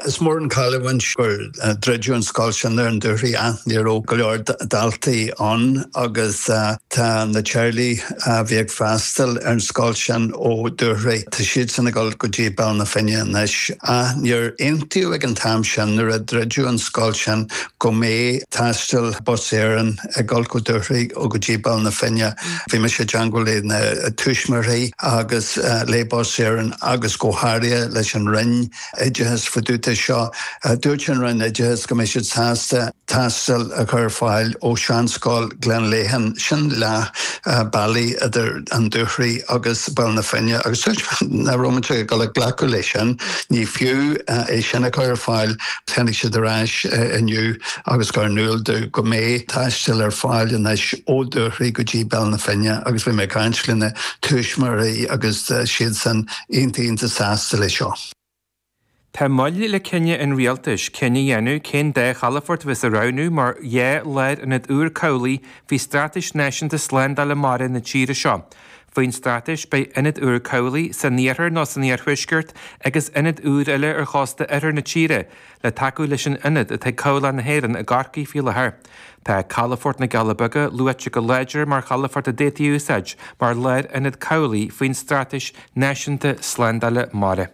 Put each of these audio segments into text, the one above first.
Is mór an cailliúint gur druideadh an scoil sin ar an Dúchoraidh ach ní raibh go leor daltaí ann agus tá na teaghlaigh a bhí ag freastal ar an scoil sin ó Dúchoraidh, tá siadsan ag dul go dtí Baile na Finne anois. Ach níor aontaíodh ag an t-am sin nuair a druideadh an scoil sin go mbeidh taisteal Bus Éireann ag dul go Dúchoraidh ó go dtí Baile na Finne. Bhí mise i dteagmháil le na tuismitheoirí agus le Bus Éireann agus go háirithe leis an Roinn Oideachais fá dtaobh de seo. Dúirt an Roinn Oideachais go mbeidh siad sásta taisteal a chur ar fáil ó sheanscoil Ghleann Léithín, sin leath bealaigh idir an Dúchoraidh agus Baile na Finne agus dúirt mé nach raibh mise ag dul ag glacadh le sin, ní fiú é sin a chur ar fáil Tháinig siad ar ais inniu agus chuir in iúl domh go mbeidh taisteal ar fáil anois ó Dúchoraidh go dtí Baile na Finne agus bhí mé ag caint le na tuismitheoirí agus siadsan iontach iontach sásta le seo. Tá moill le cinneadh an Rialtais cinneadh a dhéanamh cén dá chalafort a bheas á roghnú mar dhá lárionad úr cabhlaigh faoi Straitéis Náisiúnta Slándála Mara na tíre seo. Faoin Straitéis beidh ionad úr cabhlaigh san iarthar nó san iarthuaisceart agus ionad úr eile ar chósta oirthear na tíre le tacú leis an ionad atá ag Cabhlach na hÉireann i gCorcaigh faoi láthair. Tá Calafort na gCealla Beaga luaite go láidir mar chalafort a d'fhéadfaí a úsáid mar lárionad cabhlaigh faoin Straitéis Náisiúnta Slándála Mara.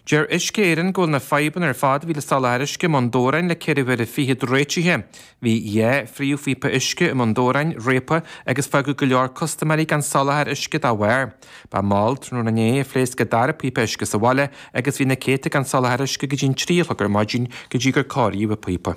Deir Uisce Éireann go bhfuil na fadhbanna ar fad a bhí le soláthar uisce i mBun Dobhráin le ceithre huaire fichead réitithe. Bhí dhá phríomhphíopa uisce i mBun Dobhráin réabtha agus fágadh go leor custaiméirí gan soláthar uisce dá bharr. Ba mhall tráthnóna inné a phléasc an dara píopa uisce sa bhaile agus bhí na céadta gan soláthar uisce go dtí an trí a chlog ar maidin go dtí gur cóiríodh an píopa.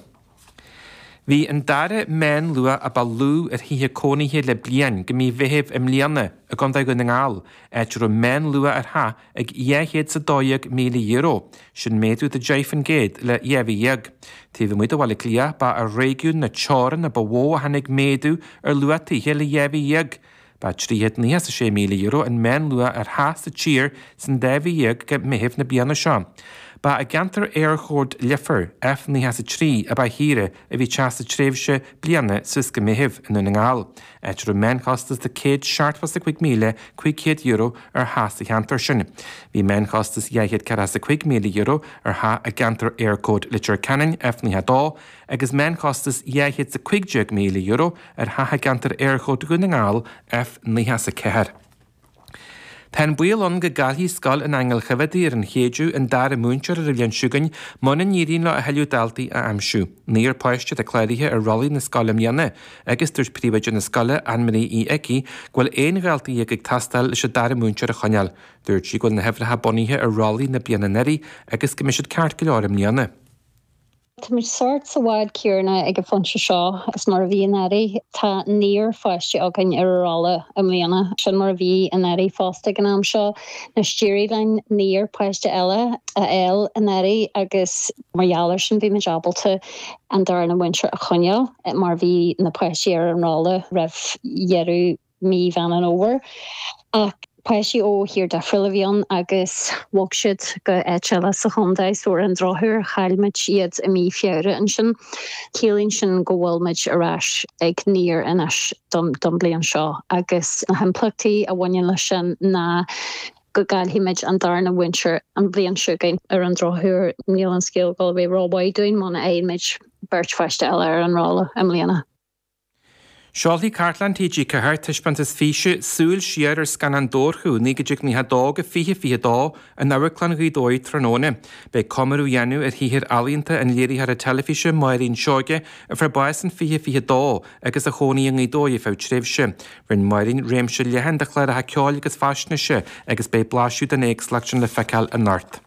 Bhí an dara meánluach a ba lú ar thithe cónaithe le bliain go mí Mheithimh i mbliana i gContae Dhún na nGall, áit a raibh meánluach ar theach ag €212,000, sin méadú de 10 faoin gcéad le dhá mhí dhéag. Taobh amuigh de Bhaile Átha Cliath, ba ar réigiún na Teorann a ba mhó a tháinig méadú ar luach tithe le dhá mhí dhéag, Ba €306,000 an meánluach ar theach sa tír san dá mhí dhéag go Meitheamh na bliana seo. Ba i gceantar Éirchód Leifir, F93, a ba shaoire a bhí teach sa tréimhse bliana suas go Meitheamh i nDún na nGall, áit a raibh meánchostas de €145,500 ar theach sa cheantar sin. Bhí meánchostas €245,000 ar theach i gceantar Éirchód Leitir Ceanainn, F92, agus meánchostas €215,000 ar thithe i gceantar Éirchód Dhún na nGall, F94. Tá an baol ann go gcaillfidh Scoil an Aingil Choimhéadaí ar an Chéideadh an dara múinteoir ar an bhliain seo chugainn muna n-éiríonn leo a thuilleadh daltaí a aimsiú. Naonúr páiste atá cláraithe ar rollaí na scoile i mbliana agus dúirt príomhoide na scoile, Anne Marie Uí Icí, go bhfuil aon dhalta dhéag ag teastáil leis an dara múinteoir a choinneáil. Dúirt sí go bhfuil na huimhreacha bunaithe ar rollaí na bliana anuraidh agus go mbeidh siad ceart go leor i mbliana. Tá muid sórt sa bhád céarna ag an phointe seo is mar a bhí anuraidh. Tá naonúr pháiste againn ar ár rolla i mbliana. Sin mar a bhí anuraidh fosta ag an am seo. Anois d'éirigh linn naonúr páiste eile a fháil anuraidh agus mar gheall ar sin bhí muid ábalta an darna múinteoir a choinneáil mar bhí na páistí ar an rolla roimh dheireadh mí Mheán an Fhómhair. Ach páistí ó thír difriúil a bhí ann agus bhog siad go áit eile sa chontae, so ar an drochuair chaill muid iad i mí Feabhra ansin. Ciallaíonn sin go bhfuil muid ar ais ag naonúr anois don bhliain seo agus na himpleachtaí a bhaineann leis sin ná go gcaillfidh muid an darna múinteoir an bhliain seo chugainn. Ar an drochuair níl an scéal ag gabháil a bheith rómhaith dúinn muna fhaigheann muid beirt pháiste eile ar an rolla i mbliana. Seolfaidh Cartlann TG4 taispeántas físe, 'Súil Siar ar Scannáin Dobharchú 1992-2022 in Amharclann Ghaoth Dobhair tráthnóna. Beidh comóradh á dhéanamh ar shaothar ealaíonta an léiritheora teilifíse Máirín Seoighe a fuair bás in 2022 agus a chónaigh i nGaoth Dobhair ar feadh tréimhse. Rinne Máirín réimse leathan de chláracha ceoil agus faisnéise agus beidh blaiseadh den éagsúlacht sin le feiceáil anocht.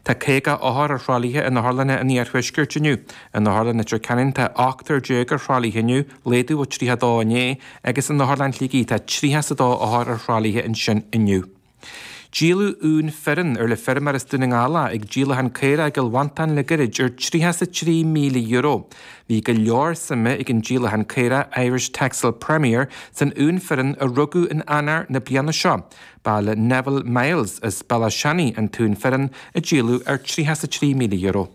Tá 50 othar ar thralaithe in otharlanna an Iarthuaiscirt inniu In Otharlann Leitir Ceanainn tá ochtar déag ar thralaithe inniu, laghdú ó 32 inné, agus in Otharlann Shligigh tá 32 othar ar thralaithe ansin inniu. Díoladh uan fireann ar le feirmeoir as Dún na nGall é ag díolachán caorach i gCill Mhantáin le goirid ar €33,000. Bhí go leor suime ag an díolachán caorach, Irish Texel Premier, san uan fireann a rugadh in Eanáir na bliana seo. Ba le Neville Myles as Béal Átha Seanaidh an t-uan fireann a díoladh ar €33,000.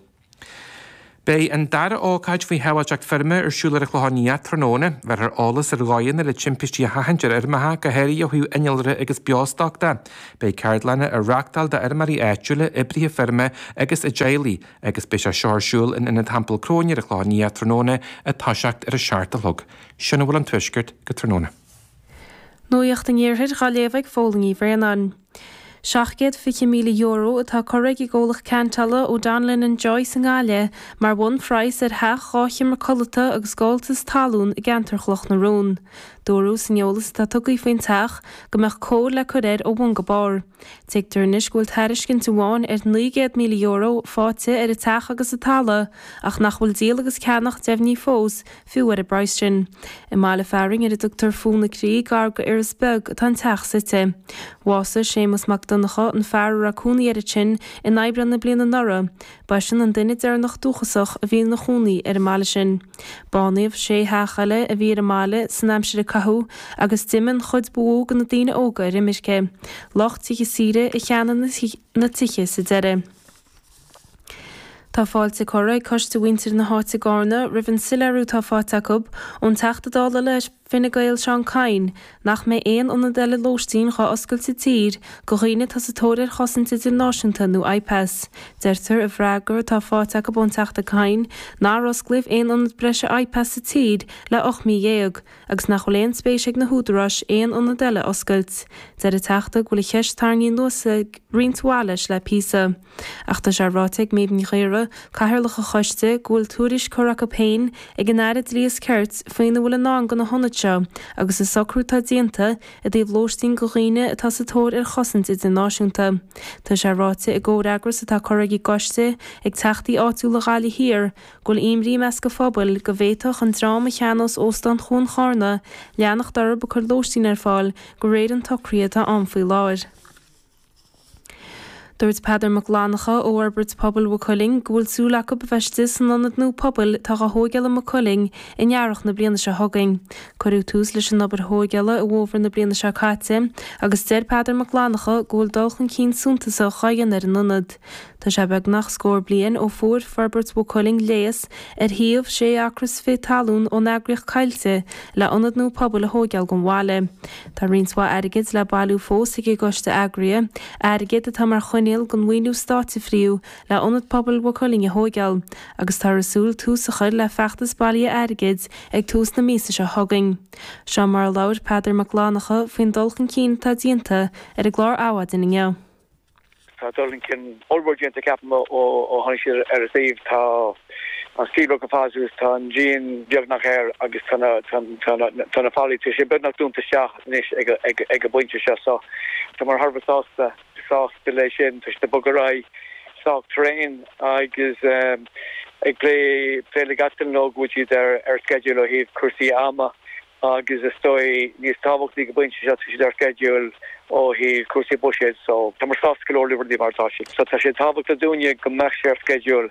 Beidh an dara ócáid faoi shábháilteacht feirme ar siúl ar an Chlochán Liath tráthnóna. Bhéarfar eolas ar dhóigheanna le timpistí a sheachaint ar fheirmeacha, go háirithe ó thaobh innealra agus beostoc de. Beidh ceardlanna á reachtáil d'fheirmeoirí áitiúla, oibrithe feirme agus a dteaghlaigh, agus beidh sé seo ar siúl in Ionad Teampall Chróine ar an Chlochán Liath tráthnóna ag toiseacht ar a seacht a chlog. Sin a bhfuil ón Tuaisceart go tráthnóna. Nuacht an Iarthair dhá léamh ag Fódhla Ní Bhraonáin. €720,000 atá curtha ag an gcomhlacht ceantála O'Donnellan and Joyce i nGaillimh mar bhunphraghas ar theach dhá sheomra codlata agus gabháltas talún i gceantar Chloch na Rón. Dúradh san eolas atá tugtha faoin teach go mbeadh cóir le cur air ó bhun go barr. Tuigtear anois go bhfuil tairiscint amháin ar €900,000 faighte ar an teach agus an talamh ach nach bhfuil díol agus ceannach deimhnithe fós Fiú ar an bpraghas sin. I mbaile fearainn ar a dtugtar Fó na Crí, gar go Iorras Beag, atá an teach suite. Bhásaigh Séamus Mac Donnchadha, an fear a raibh cónaí air ansin, in Aibreán na bliana anuraidh. Ba eisean an duine deireanach dúchasach a bhí ina chónaí ar an mbaile sin. Bánaíodh sé theach eile a bhí ar an mbaile san aimsir a caitheadh agus d'imigh an chuid ba mhó de na daoine óga ar imirce. Lucht tithe saoire a cheannaigh na tithe sa deireadh. Tá fáilte curtha ag Coiste Mhuintir na hÁite gCarna roimh an soileiriú atá faighte acu ón Teachta Dála le Fine Gael Seán Kyne nach mbeidh aon ionad eile lóistín dhá oscailt sa tír go dhaoine atá sa tóir ar chosaint idirnáisiúnta nó IPAS. Deirtear i bhfreagra atá faighte acu ón Teachta Kyne nár osclaíodh aon ionad breise IPAS sa tír le ocht mí dhéag. agus nach bhfuil aon spéis ag na húdaráis aon ionad eile a oscailt. Deir an Teachta go bhfuil an cheist tarraingthe anuas ag roinnt mhaith leis le píosa. Ach tá sé ráite ag Méabh Ní Ghaora, Cathaoirleach an Choiste, go bhfuil tuairisc curtha acu féin ag an Aire Dlí is Cirt faoina bhfuil i ndán do na hionaid seo agus an socrú atá déanta i dtaobh lóistín go dhaoine atá sa tóir ar chosaint idirnáisiúnta. Tá sé ráite i gcomhfhreagras atá curtha ag an gCoiste ag Teachtaí áitiúla Ghaillimh Thiar, Go bhfuil imní i measc a phobail, go bhféadfadh an dream a cheannós Óstán Chuan Charna leanacht orthu ag cur lóistín ar fáil go réir an tsocraithe atá ann faoi láthair. Dúirt Peadar Mac Fhlannacha ó Fhorbairt Pobail Mhaigh Cuilinn go bhfuil súil acu a bheith istigh san Ionad nua Pobail atá á thóigeáil i Maigh Cuilinn in Earrach na bliana seo chugainn. Cuireadh tús leis an obair thóigeála i bhFómhar na bliana seo caite agus deir Peadar Mac Fhlannacha go bhfuil dul chun cinn suntasach á dhéanamh ar an Ionad. Tá sé beagnach scór bliain ó fuair Forbairt Mhaigh Cuilinn léas ar shuíomh sé acra fichead talún ón eagraíocht Coillte le ionad nua pobail a thóigeáil don bhaile. Tá roinnt mhaith airgid le bailiú fós ag an gcoiste eagraithe, airgead atá mar choinníoll den mhaoiniú stáit a fríodh le ionad pobail Mhaigh Cuilinn a thóigeáil agus táthar ag súil tús a chur le feachtas bailithe airgid ag tús na míosa seo chugainn. Seo mar a labhair Peadar Mac Fhlannacha faoin dul chun cinn atá déanta ar an gclár Adhmhaidin inniu. Tá dul chun cinn ollmhór déanta ceapaim ó tháinig siad ar an suíomh. Tá an stílbhord go fada suas, tá an díon beagnach air agus tá na fallaí, tá siad beagnach dúnta isteach anois ag an bpointe seo. So tá mé thar a bheith sásta leis sin. Tá siad ag bogadh ar aghaidh sách tréan agus ag plé le gach duine leo go bhfuil siad ar sceideal ó thaobh cúrsaí ama. Agus is dóigh níos tábhachtaí ag an bpointe seo, tá siad ar sceideal ó thaobh cúrsaí buiséid so tá muid sásta go leor le rudaí mar atá siad. So tá sé tábhachtach dúinne go mbeadh sé ar sceideal.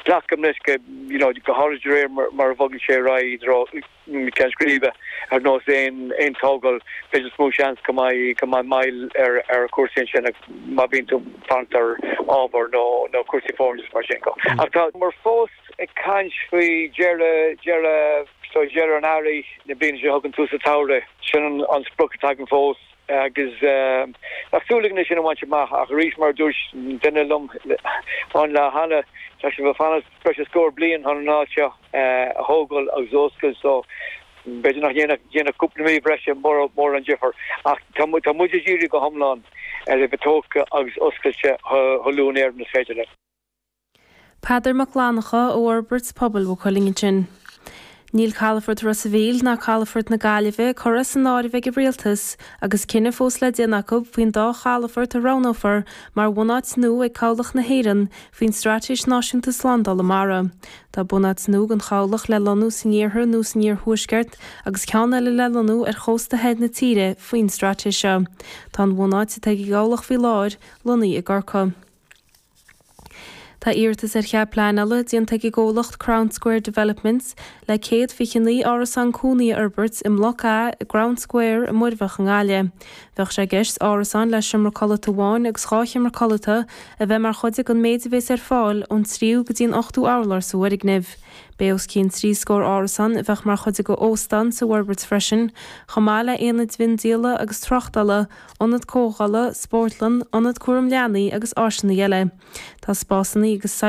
Glacaim leis go, you know, go háirid de réir mar a bhogann sé ar aghaidh i dtreo na ceann scríbe, ar nós aon tógáil, beidh níos mó seans go mbeidh go mbeidh moill ar ar chúrsaí ansin má bhíonn tú ag fanacht ar ábhar nó nó cúrsaí foirne is mar sin. Ach tá muid fós. Ag caint faoi dheireadh, deireadh, so dheireadh an earraigh, na bliana seo chugainn tús an tsamhraidh. Sin an sprioc atá againn fós agus tá súil againn é sin a bhaint amach ach arís mar a dúirt duine liom an lá cheana, tá sibh ag fanacht breis is scór bliain chun an áit seo a thógáil agus a oscailt so b'fhéidir nach ndéanfadh cúpla mí breise mórán difir ach tá muid, tá muid ag díriú go hiomlán ar a bheith tógtha agus oscailte chomh luath in Éirinn is féidir linn. Peadar Mac Fhlannchadha ó Fhorbairt Pobail Mhaigh Cuilinn ansin. Níl calafort Ros a' Mhíl ná calafort na Gaillimhe curtha san áireamh ag an Rialtas agus cinneadh fós le déanamh acu faoin dá chalafort a roghnófar mar bhunáit nua ag Cabhlach na hÉireann faoin Straitéis Náisiúnta Slándála Mara. Tá bunáit nua don Chabhlach le lonnú san iarthar nó san iarthuaisceart agus ceann eile le lonnú ar chósta thoir na tíre faoin straitéis seo. Tá an bhunáit atá ag an gCabhlach faoi láthair lonnaithe i gCorcaigh. Tá iarratas ar chead pleanála déanta ag an gcomhlacht Crown Square Developments le 129 árasán cónaí a fhorbairt i mBloc A i gCrown Square i Muirbhach i nGaillimh. Bheadh sé i gceist árasáin le seomra codlata amháin agus dhá sheomra codlata a bheith mar chuid den méid a bhéas ar fáil ón tríú go dtí an ochtú urlár sa bhfoirgneamh. Bheadh os cionn trí scór árasán a bheadh mar chuid den óstán sa bhforbairt freisin, chomh maith le haonaid mhiondíola agus tráchtála, Ionad Comhdhála, Spórtlann, Ionad Cúraim Leanaí agus áiseanna eile. Tá spásanna agus saill.